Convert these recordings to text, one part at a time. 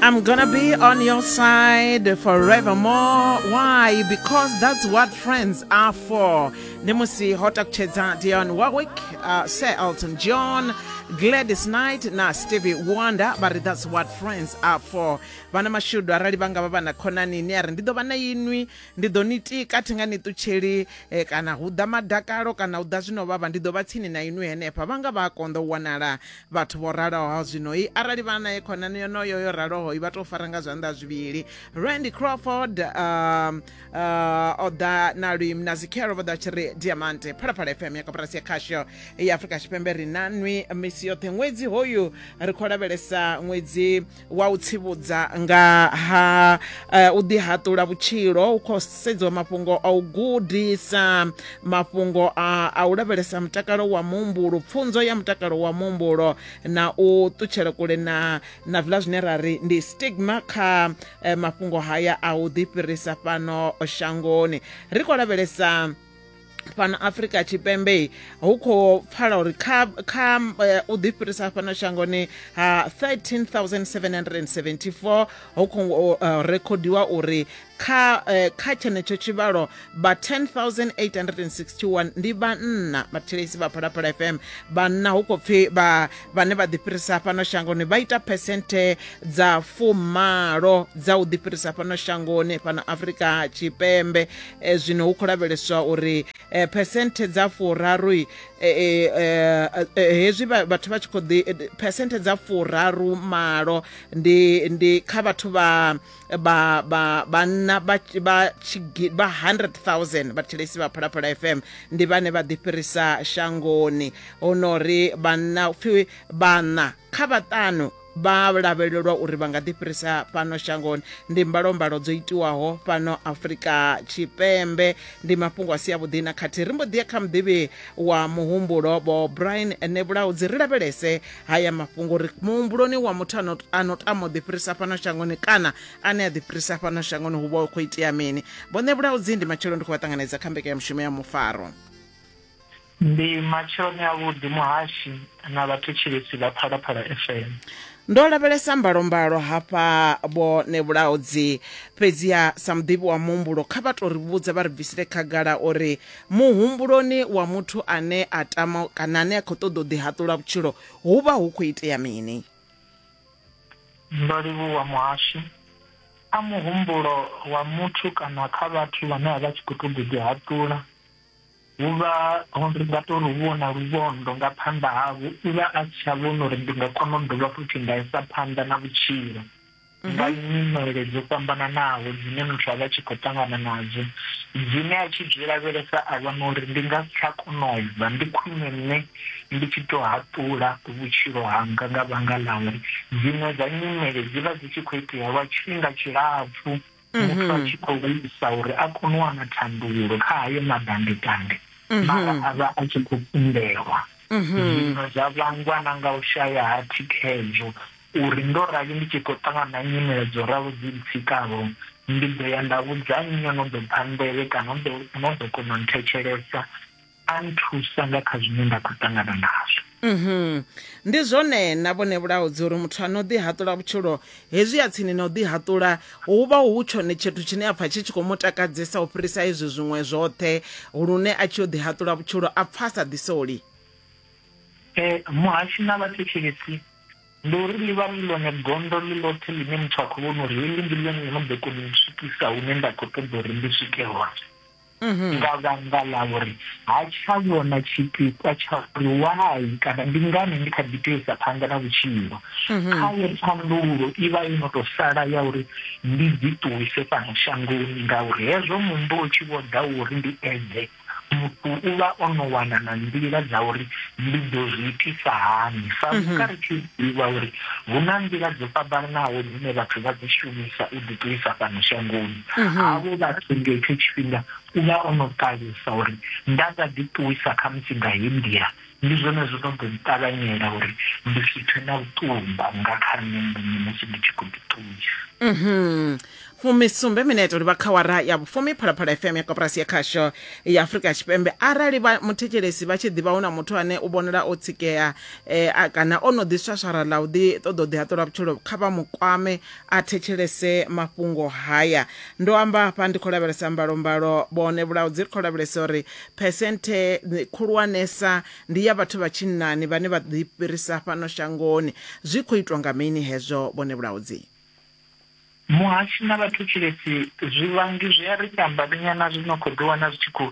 I'm gonna be on your side forevermore. Why? Because that's what friends are for. Nemusi Hotak Chedza Dion Warwick, uh, Sir Elton John, Gladys Knight na Stevie Wonder vha ri that's what friends are for. Vhana mashudu arali vha nga vha vha na khonani ni a ri ndi ḓo vha na inwi ndi ḓo ni tika thi nga ni ṱutsheli eh, kana hu ḓa madakalo kana hu ḓa zwino vhavha ndi ḓo vha tsini na inwi henefha vha nga vha a konḓa u wanala Vhathu vho raloho zwinoi arali vha nae khonani yonoyo yo ralohoi vha tou fara nga zwanḓa zwivhili randy crawford um, uh, o ḓa na luim na zikhelo vho ḓa tshi ri diamante phalaphala fm ya koporasi ya khasho ya afurika tshipembe ri na nwi misi yoṱhe ṅwedzi hoyu ri khou lavhelesa ṅwedzi wa u tsivhudza nga ha uh, u ḓihaṱula vhutshilo u khou sedziwa mafhungo a u gudisa mafhungo a, a u lavhelesa mutakalo wa muhumbulo pfunzo ya mutakalo wa muhumbulo na u ṱutshela kule na na zwiḽa zwine ra ri ndi stigma kha uh, mafhungo haya a u ḓifhirisa fhano shangoni ri khou lavhelesa fhano afrika tshipembe hu khou pfala uri kha kha eh, u ḓifhirisa fhano shangoni ha 13774 hu khou eh, rekhodiwa uri kha eh, kha tshenetsho tshivhalo vha 10861 ndi vhanna vhathetshelesi vha phalaphala fm vhanna hu khou pfhi vha vhane vha ḓifhirisa fhano shangoni vha ita phesenthe dza fumalo dza u ḓifhirisa fhano shangoni fhano afrika tshipembe E, zwino hu khou lavheleswa uri e, phesenthe dza furaru e, e, e, hezwi vhathu vha tshi khou ḓi phesenthe dza furaru malo ndi ndi kha vhathu vha vha vha vhanna vha vha tshigi vha 100000 vhathetshelesi vha phalaphala fm ndi vhane vha ḓifhirisa shangoni hu no ri vhanna upfhi vhanna kha vhaṱanu vha lavhelelwa uri vha nga ḓifhirisa fhano shangoni ndi mbalombalo dzo itiwaho fhano afurika tshipembe ndi mafhungo a si avhuḓi na khathihi ri mbo ḓiya kha muḓivhi wa muhumbulo vho brian nebulaudzi ri lavhelese haya mafhungo uri muhumbuloni wa muthu a no tama u ḓifhirisa fhano shangoni kana ane a ḓifhirisa fhano shangoni hu vha hu khou itea mini vho nebulaudzi ndi matshelo ndi khou vha ṱanganedza kha mbekanyamushumo ya mufaro Ndi matsheloni a vhuḓi muhashi na vhathu tshilisi vha Phalaphala FM. Ndo lavhelesa mbalombalo hafha vho Nevhulaho dzi fhedziha sa muḓivhi wa muhumbulo kha vha to ri vhudza vha ri bvisele khagala uri muhumbuloni wa muthu ane a tama kana ane a khou ṱoḓa u ḓi haṱula vhutshilo hu vha hu khou itea mini. Ndo livhuwa muhashi. A muhumbulo wa muthu kana kha vhathu vhane a vha tshi khou ṱoḓa u ḓi haṱula. Vho vha ho ri vha tou ri vhona luvhondo nga phanḓa havho, u vha a si tsha vhona uri ndi nga kona u dovha futhi nda isa phanḓa na vhutshilo nga nyimele dzo fhambananaho dzine muthu a vha a tshi khou ṱangana nadzo, dzine a tshi zwi lavhelesa a vhona uri ndi nga si tsha kona u bva, ndi khwine nṋe ndi tshi tou haṱula vhutshilo hanga nga vhanga ḽa uri dziṅwe dza nyimele dzi vha dzi tshi khou itea lwa tshifhinga tshilapfu. muthu a tshi khou isa uri a kone u wana thandululo kha hayo madandetange mara a vha a tshi khou kundelwa zwino zwa vhangwa na nga u shaya ha thikhedzo uri ndo rali ndi tshi khou ṱangana na nyimele dzo ralo dzi ntsikaho ndi ḓo ya nda vhudza nnyi o no ḓo pfha nḓevhe kana no ḓo kona u nthetshelesa a nthusa nga kha zwine nda khou ṱangana nazwo mhm. ndi zwone na vhone vhulaudzi uri muthu a no ḓi haṱula vhutshilo hezwi ya tsini na u ḓi haṱula hu vha hu tshone tshithu tshine a pfha tshi tshi khou mu takadzesa u fhirisa izwi zwiṅwe zwoṱhe lune a tshi yo ḓi haṱula vhutshilo a pfha a sa ḓisoli um muhashi na vhathetshelesi ndi uri ḽi vha ḽi ḽone gondo ḽi ḽothe ḽine muthu a khou vhona uri heḽi ndi ḽone ḽo no ḓo kona u swikisa hune nda khou ṱoḓa uri ndi swike hone mhm. nga vhanga ḽa uri ha tsha vhona tshipikwa tsha uri wai kana ndi ngani ndi kha ḓi tea isa phanḓa na vhutshilo mhm. khaye thandululo i vha i no tou sala ya uri ndi dzi ṱuwise fhano shangoni ngauri hezwo muhumbulo tshi vho ḓa uri ndi edze muthu u vha o no wana na nḓila dza uri ndi ḓo zwi itisa hani sa mhm. vhuka ri tshi ḓivha uri hu na nḓila dzo fhambananaho dzine vhathu vha dzi shumisa u ḓiṱuwisa fhano shangoni mhm. havho vha ri nga itsho tshifhinga u vha o no ṱalusa uri nda nga ḓi ṱuwisa kha musi nga he nḓila ndi zwone zwo no ḓo nṱavhanyela uri ndi si pfe na vhuṱumba nga kha nṋe muṋe musi ndi tshi khou ḓi ṱuwisa mhm. fumisumbe mineto ri vha kha wara ya vhufumi phalaphala fm ya koporasi ya khasho ya afurika tshipembe arali muthetshelesi vha tshi ḓivha hu na muthu ane u vhonala o tsikea um kana o no ḓiswaswara ḽa u ḓi ṱoḓa u ḓihaṱula vhutshilo kha vha mukwame a thetshelese mafhungo haya. Ndo amba hafha ndi khou lavhelesa mbalombalo vho nevhulaho dzi ri khou lavhelesa uri phesenthe khulwanesa ndi ya vhathu vha tshinnani vhane vha ḓifhirisa fhano shangoni. Zwi khou itwa nga mini hezwo vho nevhulaho dzi? Muhashi na vhathu Tshilidzi zwivhangi zwi a ri fha mbalinyana zwi no khou ḓiwana zwi tshi khou.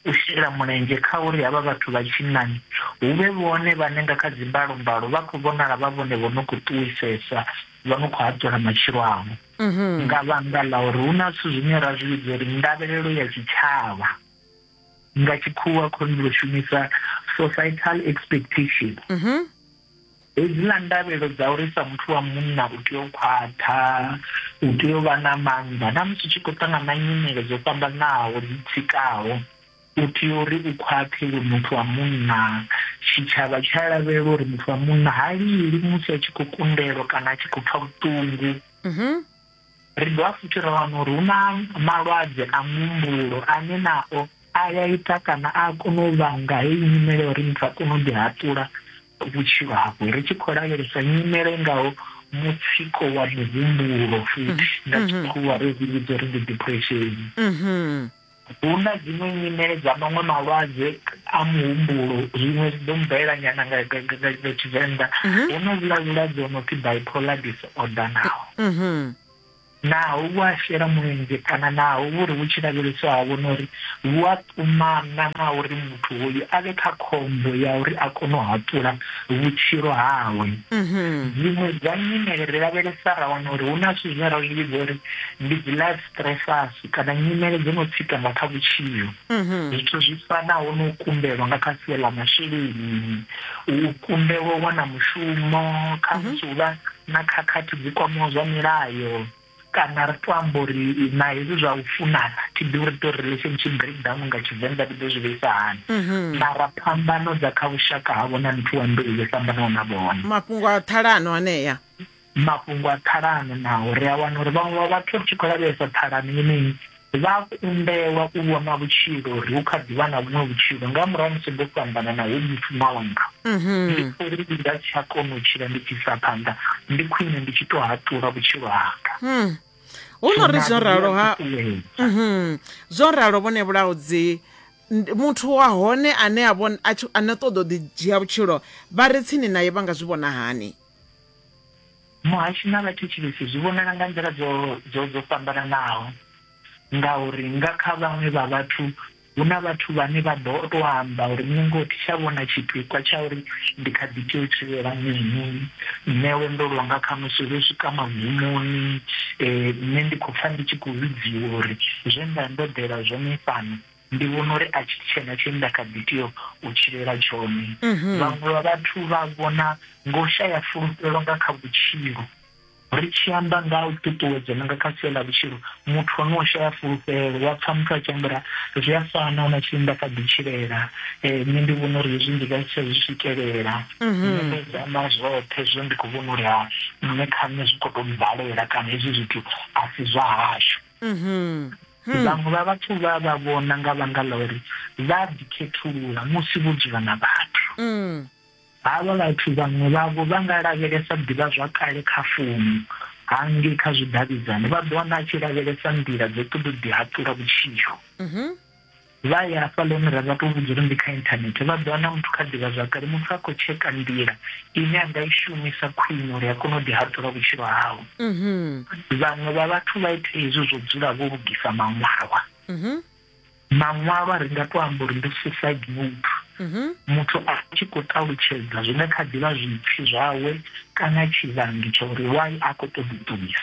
u shela mulenzhe kha uri havha vhathu vha tshinnani hu vhe vhone vhane nga kha dzimbalombalo vha khou vhonala vha vhone vho no khou ṱuwisesa, vho no khou haṱula matshilo avho nga vhanga ḽa uri hu na zwithu zwine ra zwi vhidza uri ndavhelelo ya tshitshavha, nga tshikhuwa khou ri shumisa societal expectation. Hedziḽa ndavhelo dza uri sa muthu wa munna u tea u khwaṱha, u tea u vha na maanḓa na musi u tshi khou ṱangana na nyimele dzo fhambanaho dzi tsikaho, u tea uri u khwaṱhe iwe muthu wa munna. Tshitshavha tshi a lavhelela uri muthu wa munna ha lili musi a tshi khou kundelwa kana a tshi khou pfa vhuṱungu. Ri dovha futhi ra wana uri hu na malwadze a muhumbulo ane nao a ya ita kana a kona u vhanga heyi nyimele ya uri muthu a kone u ḓihaṱula vhutshilo hawe, ri tshi khou lavhelesa nyimele i ngaho mutsiko wa muhumbulo futhi nga tshikhuwa ri zwi vhidza uri ndi depression. Hu na dziṅwe nyimele dza maṅwe malwadze a muhumbulo, zwiṅwe zwi ḓo mubvelela nyana nga Tshivenḓa. Mhm. Hu na vhula vhulwadze ho no pfi bipolar disorder naho. Mhm. Naho vhu a shela mulenzhe kana naho vhu ri vhu tshi lavheleswa ha vhona uri vhu a ṱumana na uri muthu hoyu a vhe kha khombo ya uri a kone u haṱula vhutshilo hawe. Mhm. Dziṅwe dza nyimele ri lavhelesa ra wana uri hu na zwithu zwine ra zwi vhidza uri ndi dzi life Stressasi kana nyimele dzo no tsika nga kha vhutshilo. Zwithu zwi fanaho na u kundelwa nga kha sia ḽa masheleni, u kundelwa u wana mushumo, khamusi hu vha na khakhathi dzi kwamaho zwa milayo kana ri tou amba uri na hezwi zwa u funana, thi ḓivhi uri ri tou ri relationship breakdown nga Tshivenḓa ri ḓo zwi vhuisa hani, mara phambano dza kha vhushaka havho na muthu wa mbeu yo fhambanaho na vhone. Mafhungo a ṱhalano anea. mafhungo a ṱhalano naho ri a wana uri vhaṅwe vha vhathu ri tshi khou lavhelesa ṱhalano yeneyi vha kundelwa u vhona vhutshilo uri hu kha ḓivha na vhuṅwe vhutshilo nga murahu musi ndo fhambana na hu muthu ṋawanga mhm. ndi uri ndi nga tsha kona u tshila ndi tshi sa phanḓa ndi khwine ndi tshi to haṱula vhutshilo hanga hmm. hu no ri zwo ralo ha mhm. zwo ralo vhone vhulaudzi muthu wa hone ane a ane ṱoḓa u ḓi dzhia vhutshilo vha re tsini naye vha nga zwi vhona hani Muhasho na vhathetshelesi zwi vhonala nga nḓila dzo dzo dzo fhambananaho, ngauri nga kha vhaṅwe vha vhathu hu na vhathu vhane vha ḓo to amba uri nṋe ngoho thi tsha vhona tshipikwa tsha uri ndi kha ḓi tea u tshilela mini, nṋe lwendo lwanga khamusi lwo swika magumoni, nṋe ndi khou pfha ndi tshi khou vhudziwa uri zwe nda ndo ḓela zwone fhano. ndi vhona uri a tshi tshena tshine nda kha ḓi tea u tshilela tshone mhm. vhaṅwe vha vhathu vha vhona ngo shaya fulufhelo nga kha vhutshilo ri tshi amba nga u ṱuṱuwedza nga kha sia ḽa vhutshilo muthu ane o shaya fulufhelo wa pfha muthu a tshi ambara zwi a fana na tshine nda kha ḓi tshilela eh, nṋe ndi vhona uri hezwi ndi nga si tsha zwi swikelela mhm. nṋe ndo zama zwoṱhe zwo ndi khou vhona uri ha nṋe kha nṋe zwi khou tou mbalela kana hezwi zwithu a si zwa hashu Vhaṅwe vha vhathu vha vha vhona nga vhanga ḽa uri vha a ḓikhethulula musi vho dzula na vhathu. Havha vhathu vhaṅwe vhavho vha nga lavhelesa ḓivhazwakale kha founu hangei kha zwidavhidzani, vha ḓo wana a tshi lavhelesa nḓila dza u ṱoḓa u ḓihaṱula vhutshilo. Vha ya hafhaḽani ra vha tou vhudza uri ndi kha inthanethe, vha ḓo wana muthu kha ḓivhazwakale, muthu a khou tsheka nḓila ine a nga i shumisa khwine uri a kone u ḓihaṱula vhutshilo hawe. Vhaṅwe vha vhathu vha ita hezwi zwo dzula vho lugisa maṅwalwa. Maṅwalwa ri nga tou amba uri ndi suicide note, muthu a tshi khou ṱalutshedza zwine kha ḓi vha zwipfi zwawe kana tshivhangi tsha uri why a khou ṱoḓa u ṱuwisa.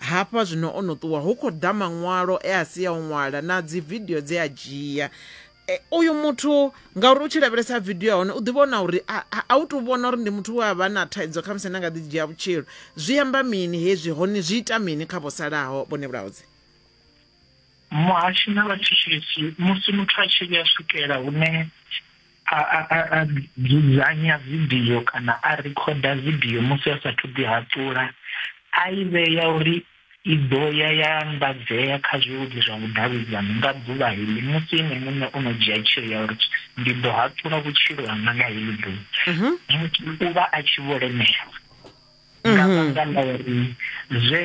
Hafha zwino o no ṱuwa, hu khou ḓa maṅwalo e a si a u ṅwala na dzividio dze a dzhia. E, uyu muthu ngauri u tshi lavhelesa vidio ya hone u ḓi vhona uri a u tou vhona uri ndi muthu we a vha na thaidzo khamusi na nga ḓi dzhia vhutshilo. Zwi amba mini hezwi hone zwi ita mini kha vho salaho vhone vhulaudzi? Muhashi na vhathetshesi musi muthu a tshi vhuya swikela hune a a a a dzudzanya vidio kana a rikhoda vidio musi a sathu ḓi haṱula a i vhea uri i ḓo ya ya anḓadzea kha zwileludzi zwa vhudavhidzani nga ḓuvha heḽi musi ene muṋe o no dzhia tsheo ya uri ndi ḓo haṱula vhutshilo hanga nga heḽi ḓuvha muthu u vha a tshi vho lemelwa. nga mm-hmm. vhanga ḽa uri zwe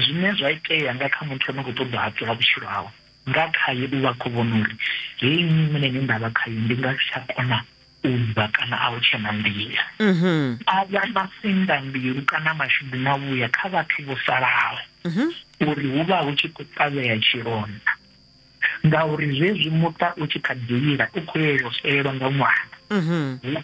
zwine zwa itea nga kha muthu ane khou ṱoḓa hatula vhutshilo hawe nga khaye u vha khou vhona uri heyi nyimele ine nda vha khayo ndi nga si tsha kona u bva kana a u tshe na nḓila mm-hmm. a vha masinda mbilu kana mashudu na vhuya kha vhathu vho salaho mm-hmm. uri hu vha hu tshi khou ṱavhea tshilonda ngauri zwezwi muṱa u tshi kha ḓi lila u khou yelwa u nga ṅwana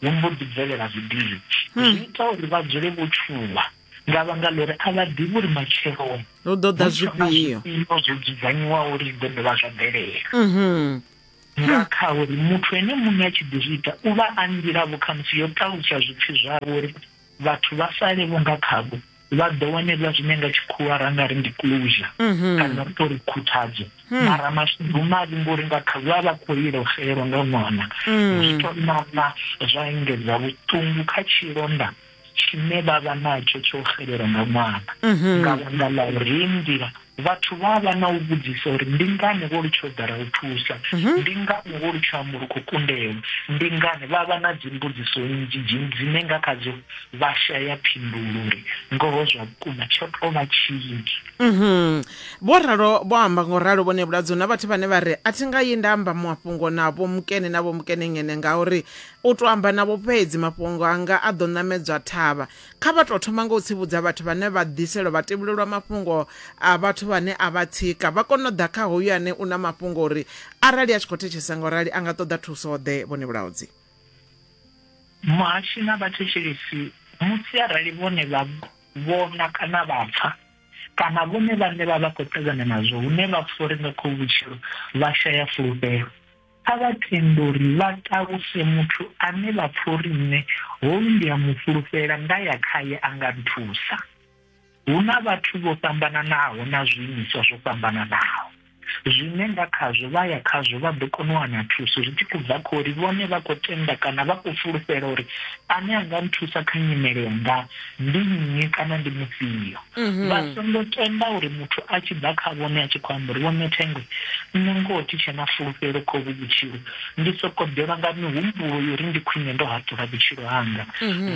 hu mbo ḓi bvelela zwidindi hmm. zwi ita uri vha dzule vho tshuwa nga vhanga ḽo ri a vha ḓivhi uri matsheloni hu ḓo ḓa zwifhio zwo dzudzanyiwaho uri zwi ḓo dovha zwa bvelela mhm. nga hmm. kha uri muthu ene muṋe a tshi ḓi zwi ita u vha a nḓila vho khamusi yo ṱalusa zwipfi zwavho uri vhathu vha sale vho nga khavho vha ḓo wanelwa zwine nga tshikhuwa ra nga ri ndi closure mhm. kana ri tori khuthadzo hmm. mara mashudu mavhi ngori nga kha vha vha khou ilo xelwa nga ṅwana hmm. zwi to nana zwa engedza vhuṱungu kha tshilonda tshine vha vha natsho tsho xelelwa nga ṅwana mhm. nga vhanga ḽa uri nḓila Vhathu vha a vha na u vhudzisa uri ndi ngani vho litsha u ḓala u thusa, ndi ngani vho litsha amba uri khou kundelwa, ndi ngani. Vha vha na dzimbudziso nnzhi dzine dzine nga khadzo vha shaya phindulo uri ngoho zwa vhukuma tsho tou vha tshini. Vho ralo vho amba nga u ralo Vho Nebuladzo hu na vhathu vhane vha ri, A thi nga yi nda amba mafhungo na Vho Mukene na Vho Mukenengene ngauri u tou amba navho fhedzi mafhungo anga a ḓo ṋamedzwa thavha. Kha vha tou thoma nga u tsivhudza vhathu vhane vha ḓiselwa vhatevhuli lwa mafhungo a vhathu vhane a vha tsika, vha kone u ḓa kha hoyu ane u na mafhungo uri arali a tshi khou thetshelesa nga u rali a nga ṱoḓa thuso-ḓe vhone vhulaudzi. Muhashi na vhathetshelesi musi arali vhone vha vhona kana vha pfa kana vhone vhaṋe vha vha khou ṱangana nazwo hune vha pfa uri nga khohuvhutshilo vha shaya fulufhelo. Kha vha tende uri vha ṱaluse muthu ane vha pfa uri nṋe hoyu ndi a mu fhulufhela, nda ya khae a nga nthusa. Hu na vhathu vho fhambananaho na zwiimiswa zwo fhambananaho zwine nga khazwo vha ya khazwo vha ḓo kona u wana thuso zwi tshi khou bva kha uri vhone vha khou tenda kana vha khou fulufhela uri ane a nga nthusa kha nyimele yanga ndi nnyi kana ndi mufhio vha songo tenda uri muthu a tshi ḓa kha vhone a tshi khou amba uri vho ṋe thengwe nṋe ngoho thi tshe na fulufhelo kha uvhu vhutshilo ndi soko ḓelwa nga mihumbulo yori ndi khwine ndo haṱula vhutshilo hanga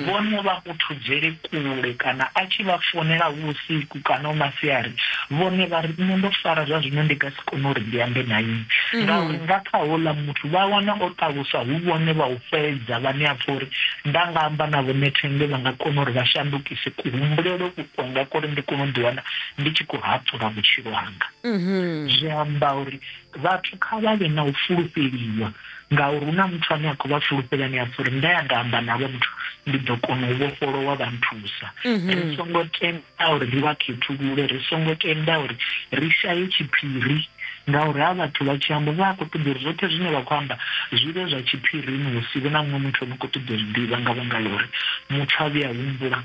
vhone vha muthudzele kule kana a tshi vha founela hu vhusiku kana hu masiari, vhone vha ri, Nṋe ndo fara, zwa zwino ndi nga si kone uri ndi ambe na inwi, ngauri nga kha houḽa muthu vha wana o ṱaluswa hu vhone vha u fhedza vhane a pfa uri nda nga amba navho nṋe thenge vha nga kona uri vha shandukise kuhumbulele uku kwanga kwo ri ndi kone u ḓiwana ndi tshi khou haṱula vhutshilo hanga. Zwi amba uri Vhathu kha vha vhe na u fulufheliwa, ngauri hu na muthu ane a khou vha fulufhela ane a pfa uri nda ya nda amba na vhathu, ndi ḓo kona u vhofholowa vha nthusa. Ri songo tenda uri ri vha khethulule, ri songo tenda uri ri shaye tshiphiri, ngauri ha vhathu vha tshi amba vha a khou ṱoḓa uri zwoṱhe zwine vha khou amba zwi vhe zwa tshiphirini, hu si vhe na muṅwe muthu o no khou ṱoḓa u zwi ḓivha nga vhanga ḽa uri muthu a vhuya a humbula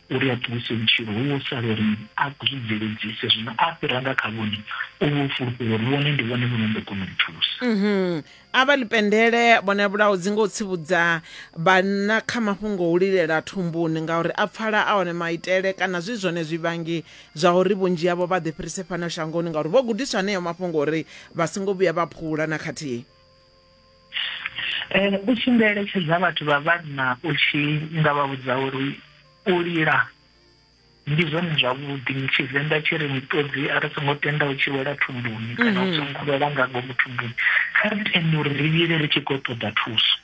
uri a ṱuwise vhutshilo hu vho sala uri a zwi bveledzise, zwino a fhira nga kha vhone u vho fulufhela uri vhone ndi vhone vhono ḓo kona u thusa. Mhm. A vha ḽipendele vhone vhulaudzi nga u tsivhudza vhanna kha mafhungo a u lilela thumbuni ngauri a pfala a one maitele kana zwi zwone zwivhangi zwa uri vhunzhi havho vha ḓifhirise fhano shangoni ngauri vho gudiswa haneyo mafhungo uri vha songo vhuya vha phula na khathihi. Eh, u tshi nga eletshedza vhathu vha vhanna u tshi nga vha vhudza uri u lila ndi zwone zwavhuḓi tshivenḓa tshi ri miṱodzi a ri songo tenda u tshi wela thumbuni kana u mhm. songo wela nga ngomu thumbuni kha ri tende uri ri lile ri tshi khou ṱoḓa thuso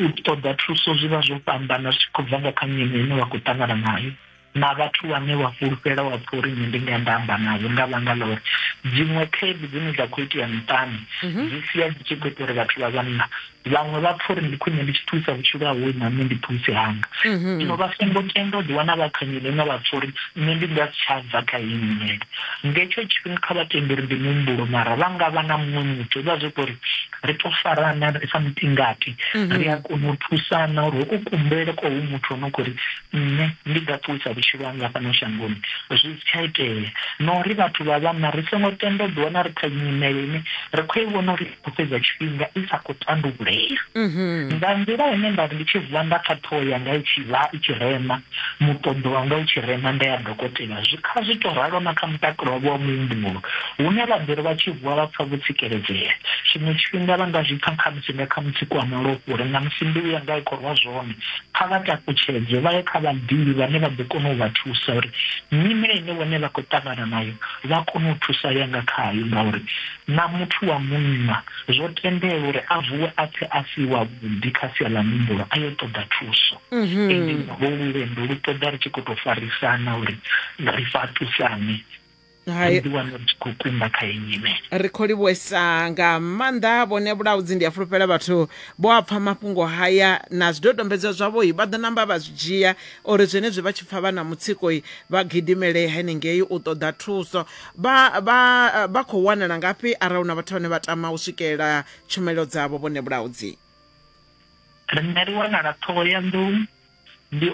u ṱoḓa thuso zwi vha zwo fhambana zwi khou bva nga kha nyimele ine wa khou ṱangana nayo na vhathu vhane vha fhulufhela wa pfha uri nṋe ndi nga nda amba navho nga vhanga ḽa uri dziṅwe khaedu dzine dza khou itea miṱani mhm. dzi sia dzi tshi khou ita uri vhathu vha vhanna vhaṅwe vha pfha uri ndi khwine ndi tshi thusa vhutshilo hawe na nṋe ndi thusi hanga mhm. zwino vha songo tenda u ḓiwana vha kha nyimele ine vha pfha uri nṋe ndi nga si tsha bva kha iyi nyimele ngetsho tshifhinga kha vha tende uri ndi muhumbulo mara vha nga vha na muṅwe muthu vha zwi uri ri to farana ri sa mutingati mhm. ri a kona u thusana uri u kumbele kwa hu muthu o no khou ri Nṋe ndi nga ṱuwisa vhutshilo hanga fhano shangoni zwi si tsha itea, na uri vhathu vha vhanna ri songo tenda u ḓiwana ri kha nyimele ine ri khou i vhona uri i khou fhedza tshifhinga i sa khou tandululea. Nga nḓila ine nda ri ndi tshi vuwa nda pfa ṱhoho yanga i tshi vha i tshi rema, muṱoḓo wanga u tshi rema nda ya dokotela, zwi kha zwi tou ralo na kha mutakalo wavho wa muhumbulo, hune vha ḓo ri vha tshi vuwa vha pfa vho tsikeledzea. Tshiṅwe tshifhinga vha nga zwi pfa khamusi nga kha mutsiko wa malofha uri ṋamusi mbilu yanga a i khou rwa zwone. kha vha takutshedzwe vha ye kha vhaḓivhi vhane vha ḓo kona u vha thusa uri nyimele ine vhone vha khou ṱangana nayo vha kone u thusalea nga khayo ngauri na muthu wa munna zwo tendelwa uri a vuwe a pfe a si wavhuḓi kha sia ḽa muhumbulo a yo ṱoḓa thuso. Ende holu lwendo lu ṱoḓa ri tshi khou tou farisana uri ri fhaṱusane. ri ḓi wana ri tshi khou kumba kha iyi nyimele ri khou livhuesa nga maanḓa vhone vhulaudzi ndi a fulufhela vhathu vho a pfha mafhungo haya na zwidodombedzwa zwavhoi vha ḓo namba vha zwi dzhia uri zwenezwi vha tshi pfha vha na mutsikoi vha gidimele henengei u ṱoḓa thuso vha vha vha khou wanala ngafhi arali hu na vhathu vhane vha tama u swikelela tshumelo dzavho vhone vhulaudzi riṋe ri wanala ṱhohoyanḓou ndi